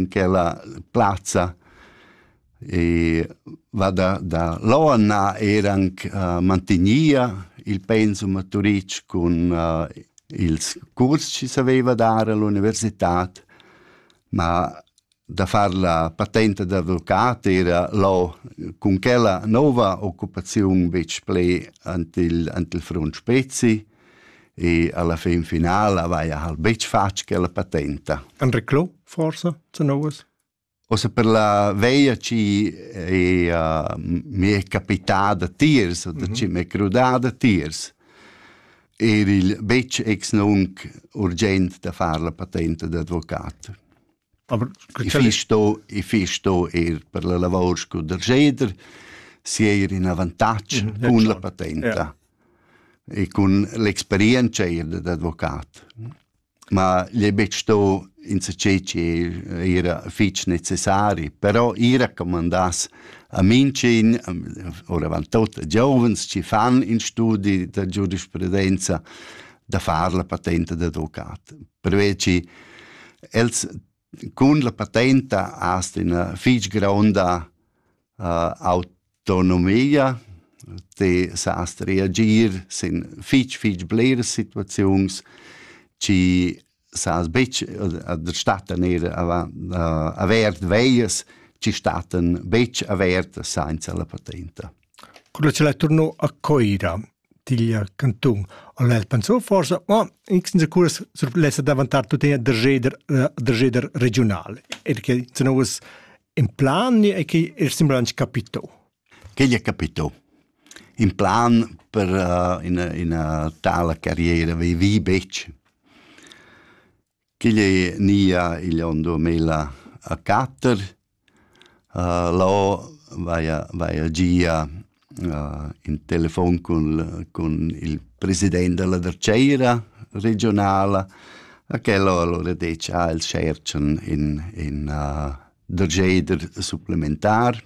in quella plazza e va da, da Loana eran uh, mantegnia il pensum a Turitg cun uh, ils curs che saveva dar all'universitad, ma da far la patente d'avvocat era lo cun quella nova occupazione bec ple ant il, ant il front spezi e alla fin finala avaja hal betg fatg quella patenta. An reclò, forsa, zu novas? Osa per la veia ci è uh, mi è capitada tiers, mm -hmm. ci m'è crudada tiers. Er il betg ex nunc urgent da far la patenta d'advocat. Aber ich sto ich sto er per la lavor scu der jeder si er in avantatg mhm, cun la patenta e cun l'experienza er d'advocat. Ma le bet sto in se ceci era fitch necessari, però i raccomandas a Mincin, ora van tot giovens ci fan in studi da giurisprudenza da far la patenta d'advocat. Perché che els cun la patenta hast ina fich gronda uh, autonomia, te sast reagir sin fich fich bleras situaziuns, ci sas bitch der statten er avert veies ci statten bitch avert senza la patenta. Quello ce la turno a Coira. digl cantun. Al el pensau forsa, mo insens curas surplessa davantar tuttina dergeder dergeder regiunal. Er che sono us in plan e che er sembra anche capito. Che gli è capito? In plan per uh, in, una tale carriera vi vi bec. Ch'igl ei nia igl onn duamilla e quatter. Lò vaia vaia gia in telefon cun cun il president dalla dertgeira regiunala e quel ho alura detg ah els tscherchan in in dergeider supplementar.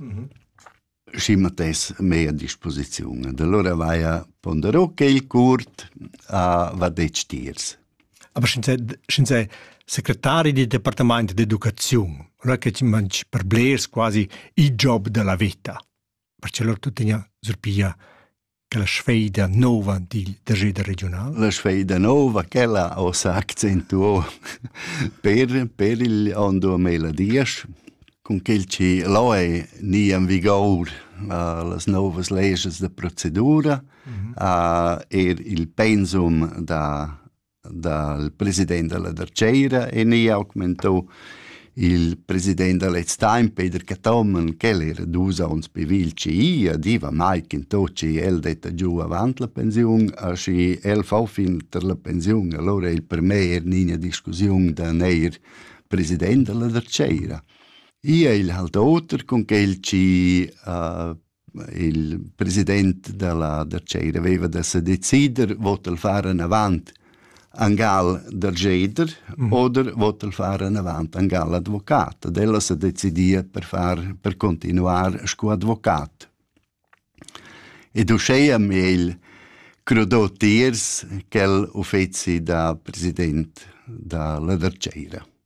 schi matess mei a disposiziun. ed allora vaia ponderò quel curt a va detg tiers. Aber sch'in sei, sch'in sei secretari del departament d'educaziun, allora che ti mangi per blers quasi il job della vita. Perché loro tuttina surpiglia la sfeida nova dil dageda regional? La sfeida nova, quella ho sa accentuo per, per il on 2010, cun quel che lo è ni in vigor uh, las novas leges de procedura, uh, er il pensum da dal president dalla dartgeira e ni augmentau il president da lez time Peter Cathomen ch'el era dus onns pivil ci a diva mai che to ci el detta giu avant la pensiun a schi el fa fin ter la pensiun allora il per me er nina discussiun da neir president dalla dartgeira Ia il halt oter con quel ci uh, il president dalla da tscheira veva da se decider vot el far anavant angal da jeder mm. oder vot el far anavant angal advocat ad ella se decidia per far per continuar sco advocat ed uscheia meil crodò tiers quel uffeci da president da la da tscheira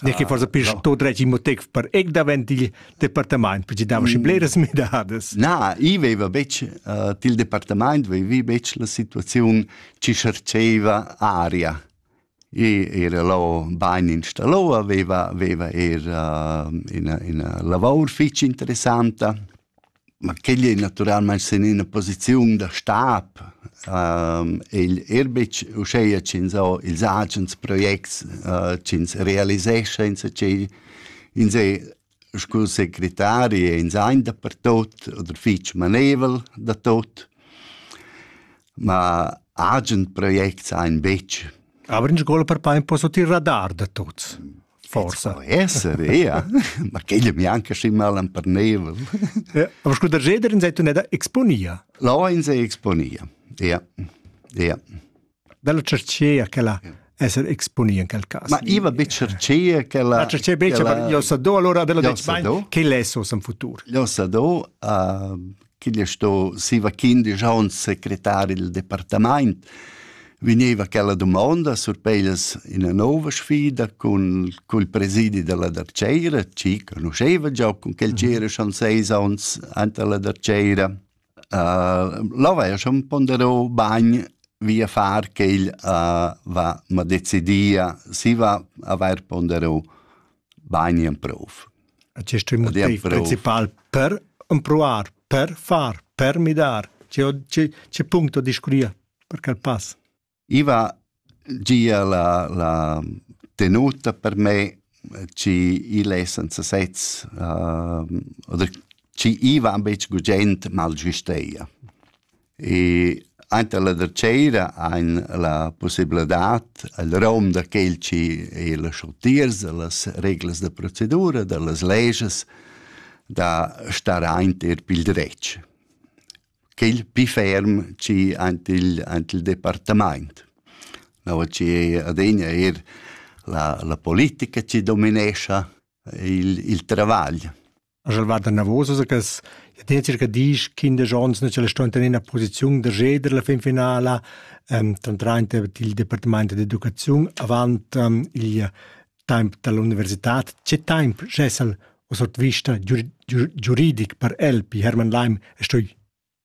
Ne che forsa pers to dretg motiv per ec davent il departament, perché dava schi bleras midadas. Na, i veva betg uh, til departament, vevi betg la situaziun ci cherceva aria. I era lo bain installo, veva, veva era uh, ina, ina lavor fitch interessanta, Ma quegl ei naturalmein sin ina posiziun da stab. igl ir betg uscheia ch'ins ho ils agens projects ch'ins realisescha insatgei. Ins ei scu secretari e ins ein dapertut oder fetg manevel da tot. Ma agen projects ein betg. Aber in scola per pa imposto tir radar da tuts. Forsa. Po esser, ja. Ma quella mi anche schi mal empernevol. Ja, aber scuda jeder in sei tuneda exponia. La in sei exponia. Ja. Ja. Della cercea che la esser exponi in quel caso. Ma iva be cercea che la La cercea be che io sa do allora della dec che lei so in futur. Io sa do uh, ch'igl è sto siva quindisch onns secretar il departamaint, vegneva quella dumonda surpeglias ina nova sfida cun cul presidi della Darceira, ci conosceva già con quel c'era schon seis onns ante la Darceira. Uh, là va schon ponderò bagn via far che il uh, va ma decidia si va aver ponderò bagn in prof. A quest motiv principal per empruar, per far, per midar. C'è punto discuria per quel pass? Iva gia la, la tenuta per me ci il è senza sez uh, oder ci iva ambetg gugent mal giusteia E ainter la darcheira hain la pussibladad al rom da quel chi ei las urtiers, da las reglas da procedura, da las leges, da star aint eir pil dretg. Quel pi ferm chi aint il, aint il departamaint. No, chi ei adegna eir la, la politica chi dominescha il, il travagl. Sch'el va danavos a cas, ja tincher che disch kindesch ons nu ch'el sto in ina posiziun da jeder la fin finala, ehm dann trainta il departamaint d'educaziun avant ehm il temp dall'università. Che temp schessa'l ho sot vista giu giu giuridic per el pi Hermann Leim e stui?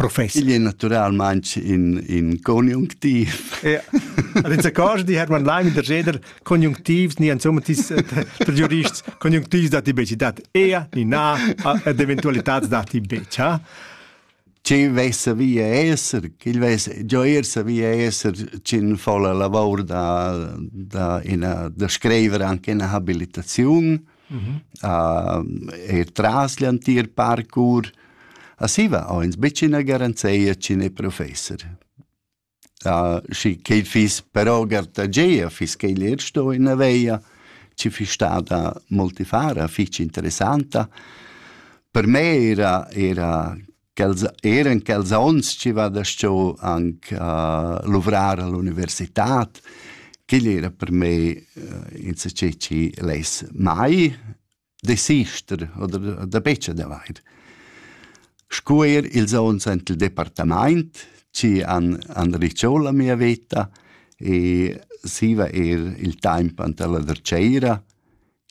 profess. Igl è naturalmain in, in conjunctiv. ja. Also kannst die Hermann Leim in der Geder Konjunktiv ni insomma tis per giurists konjunktivs da ti beci dat ea ni na ed eventualitats da ti bec, ha? Ci vesse via esser, il vesse gioirse via esser cin folla lavor da da ina da scriver anche in habilitaziun Mm -hmm. uh, e tras l'entir parcours Asiva ho ins betg ina garanzia ch'in è professor. Uh, schi che fiss però gartageia, fiss che lir sto in aveia, ci fiss stada multifara, fich interessanta. Per me era, era quels eran quels onns chi va da sto anche a luvrar all'universitad quel era per me eh, in se chi less mai desister oder da beccia da vair scu er ils ons ant il departament ci an an ricciò la mia veta e siva er il temp ant la derceira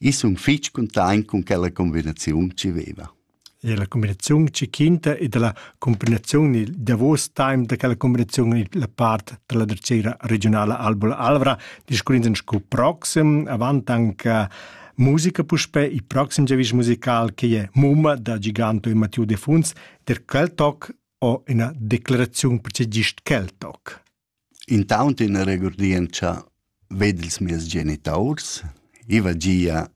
Ich sun fich containt con quella combinaziun chi veva. E la combinaziun chi quinta e dalla combinaziun il davos time da quella combinaziun in la part della drecera regionala Albola Alvra, discurrendo sco proxim, avant anche musica puspè, il prossimo giavisch musical che è Mumma da Giganto e Matteo De Funs, der Keltok o una declarazione per c'è gist Keltok. Intaunt üna regurdientscha ved ils mieus genitaurs. I va gia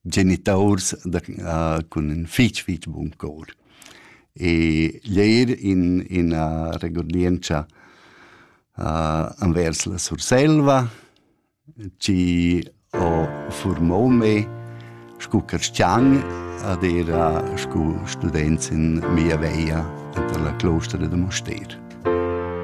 genitaurs da cun ün fich fich bun cor. E l'eir in üna regurdientscha envers la Surselva chi ho furmà me scu carschan ed era scu student in mia veia enter la clostra da Mustér.